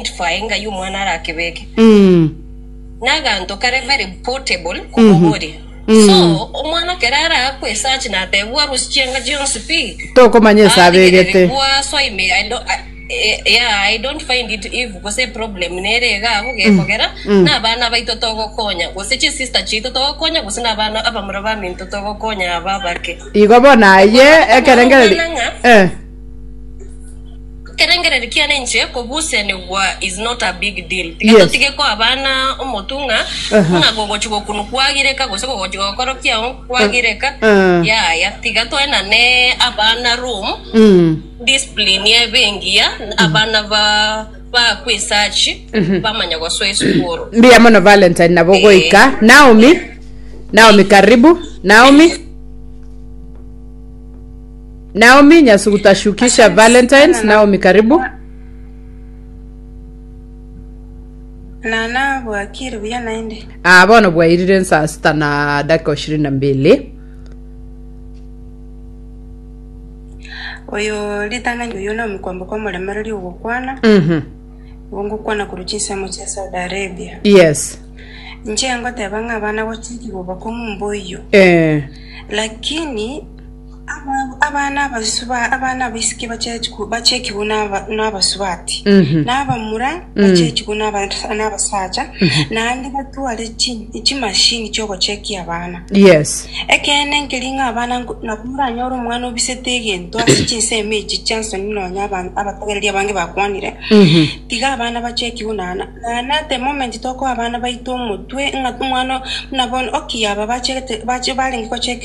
identify ng'ai omwana arakebeke. Naganto kare very portable kobogori. So omwana kere araakwe esachi natebwa arusie chianga chionsi pi. Tokomanya ase abegete. Arigereri gwa so I may I don't eh, yeah, I don't find it if gose problem nere iga abo gekogera na abana abaito togokonya gose chisister chiaito togokonya gose na abana abamura baminto togokonya aba abake. Igo bono aye ekerengereri. Omwana ng'a Eh. Ekerengererio kiane inche kobusenigwa is not a big deal. Tiga Yes. totige koa abana omotung'a Aha. buna gogochi gokunwa kwagireka gose gogochi gokorokia oo kwagireka. Ah. Yaya, tiga toenane abana room Mm. discipline ebe engiya abana ba bakwe esachi bamanya gosoa esukuru. mbuya mono valentine nabo goika naomi naomi karibu naomi Naomi nyasugutashukisha Valentines Naomi karibu. Na nabwakire buya naende. Ah, bono bwairire saa sita na dakika ishirini na mbili. Oyo ritang'ani oyo na omokwambo kwa omoremereri ogokwana. Mhm. Ogokwana korwa chinsemo chia Saudi Arabia. Yes. Nche ngoteba ng'a abana gochiki gobakong'u mboyo. Eh. Lakini Abana abaisiki bachekigwe nabasubati, na abamura bachekigwe nabasacha, naende batware chimashini chi'ogochekia abana. Ekeene nkeri ng'a abana nabo moranyore omwana obisete egento ase chinsemo echi chi'ensoni nonya abatogereri abange bakwanire, tiga abana bachekigwe. Naende at the moment tokoa abana baito omotwe ng'a omwana buna bono, okay, aba barenge gochekigwa.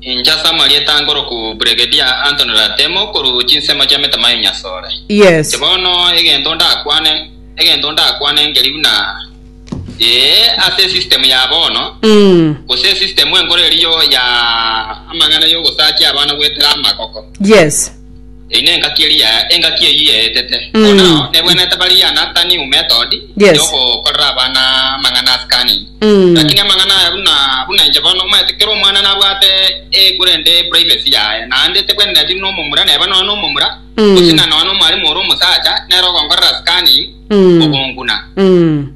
Inche ase amarieta ange oroku Brigedia Anthony Ratemo korwa chinsemo chi'emetama ya Nyasore. Yes. Inche bono egento ndakwane, egento ndakwane nkeri buna ee ase esystem ya bono, Mm. gose esystem enkoro erio ya amang'ana y'ogosakia abana goetera amagoko. Yes. Eyi nengaki eria engaki eyio eetete. Mm. Bono nao nebwenerete baria Nathani o Method Yes. yogokorera abana amang'ana a scanning. Mm. Lakini amang'ana aya buna buna inche bono omanyete kera omwana nabwate ekure ende privacy yaye naende tebwenereti buna omomura neba nonya nomomura Mm. gose na nonya nomwalimu ore omosacha nere ogonkorera scanning Mm. ogonguna. Mm.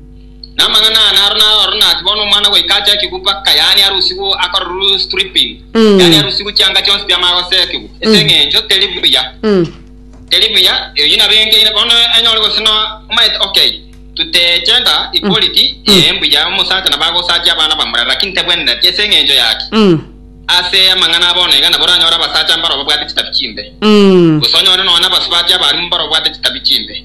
Namang'ana aya naro naro ororo nase bono omwana goika ache ekegupwa ka yaani arusigwe akorerwe stripping, Mm. yaani arusigwe chianga chionsi bia magose ekegupwa, ase eng'encho teri buya Mm. teri buya eyi nabo enkeire bono enyore gose no omaete okay tuteche nda equality Mm. ee mbuya omosacha nabo agosacha abana bamura lakini tabwenereti ase eng'encho yaki Mm. ase amang'ana abo bono iga nabo oranyore abasacha mbaro babwate chitabi chimbe Mm. gose onyore nonya abasubatia abarimu mbaro babwate chitabi chimbe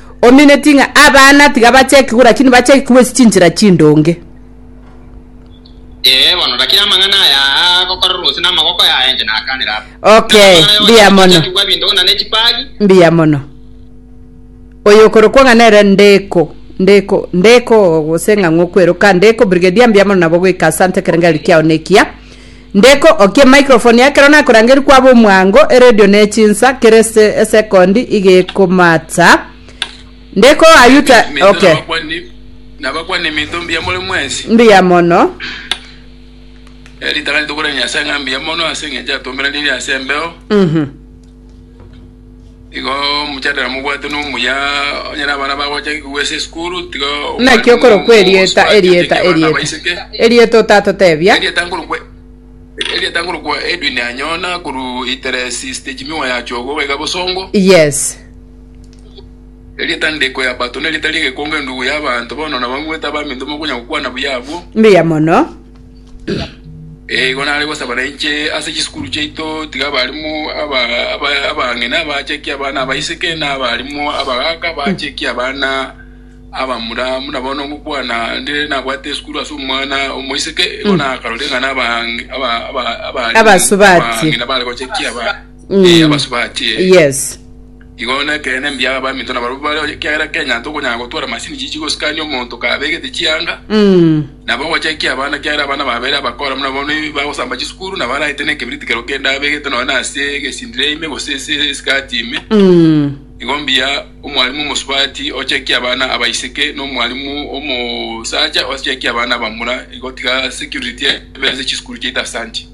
Omineti ng'a abana tiga bachekigwe, rakini bachekigwe ase chinchera chindonge. Ee bono, rakini amang'ana aya agokorerwa gose namaboko yaye inche nakanera aba. Okay, Naro amang'ana mbuya yonsi mono. achechekigwa ebindong'ina ne chipagi. Mbuya mono. Oyo okorokwa ng'a nere Ndeko, Ndeko, Ndeko gose ng'a ng'okweroka, Ndeko, Brigadier mbuya mono nabo goika asante, ekerengari kiao nekiya. Ndeko okie microphone ekero nakorangeria kwaba omwango eredio ne chinsa kere se esecond iga ekomata Ndeko Nabakwani ayuta minto, okay nabakwani, nabakwani minto mbuya more mwensi. mbuya mono Eritang'ani tokorera Nyasae ng'a mbuya mono ase engencho atomberanirie ase embeo. Mhm. Igo omochadera mobwate nomuya onye nabana bagocha kigwa ase esukuru tiga Naki okorokwa erieta, erieta, erieta, erieta otatotebia. Erieta nkorokwa erieta nkorokwa Edwin Anyona korwa Iteresi stage miwa ya Chogo iga iga Bosongo. Yes. Erieta ndiko ya Bato nerieta ria egekongo endugu y'abanto bono nabang'wete abaminto mokonya gokwana buya abwo. Mbuya mono. Igo nare gosaba na inche ase chisukuru chiaito, tiga abaalimu abang'ina baachekie abana abaiseke, na abaalimu abagaaka baachekie abana abamura. Buna bono ngokwana, nde nabwate esukuru ase omwana omoiseke, igo nakarorire ng'a abang'ina bare gochekia abana. Eh, abasubachi, eh. yes Igo nekeene mbuya abaminto nabarabwo bare ekiagera Kenya tokonyara gotwara masini chichi gosikania omonto kabegete chianga Mm. nabo ogochekia abana ekiagera abana babere abakora buna bono bagosamba chisukuru nabo araete na ekebiriti kereo kende abegete nonya na ase egesindire ime gose ase esikati ime Mm. igo mbuya omwalimu omosubati ochekia abana abaiseke na omwalimu omosacha ochekia abana abamura igo tiga security ebe ase chisukuru chiaito ase anche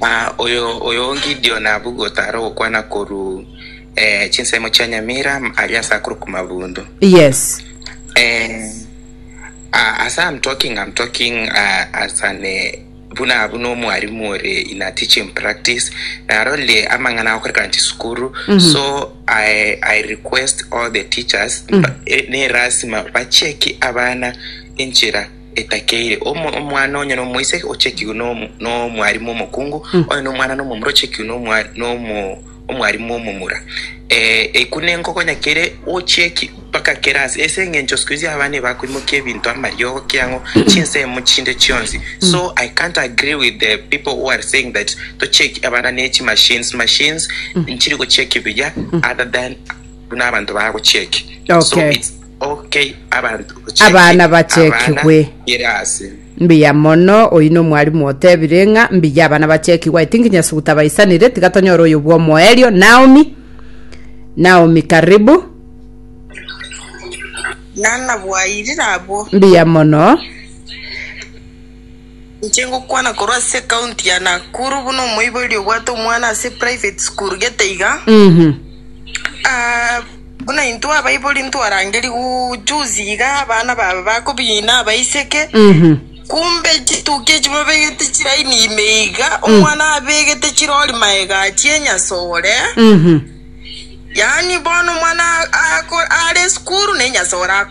Na oyo oyo Gideoni abwo gotara ogokwana korwa chinsemo chia nyamira aria ase akoro kw'amabundu. Yes. Eh, uh, as I'm talking, I'm talking uh, as an eh, buna buna omwarimu ore in a teaching practice narole amang'ana akorekana chisukuru mm -hmm. so I, I request all the teachers mm -hmm. ne rasima bacheki abana enchera etakeire, omo- omwana onye nomoiseke ochekigwe nom- nomwarimu omokungu, onye nomwana nomomura ochekigwe nomwa- nomo- omwarimu omomura. Eh, eku nenkogonya kere ochieki mpaka kere ase, ase eng'encho isiko izi abana ebakoimokia ebinto amariogo kiang'o chinsemo chinde chionsi. So I can't agree with the people who are saying that tochieki abana ne chimachines, machines nchiri gochieki buya other than buna abanto bagochieki. So Okay. it's Abana bachekigwe. Mbuya mono, oyio nomwalimu otebire ng'a mbuya abana bachekigwe, I think Nyasuguta abaisanire, tiga tonyore oyo bwomoerio, Naomi, Naomi karibu. Nana bwairire abwo. Mbuya mono. Inche ngokwana korwa ase ecounty ya Nakuru buna omoibori obwate omwana ase private school gete iga Mhm. Ah, buna intwe abaibori ntwarangeri gu- juzi iga abana babe bakobina abaiseke Mhm. kumbe chituki echi babegete chiraini ime iga omwana abegete chirori maega achie enyasore Mhm. yaani bono omwana ako- are esukuru na enyasore ako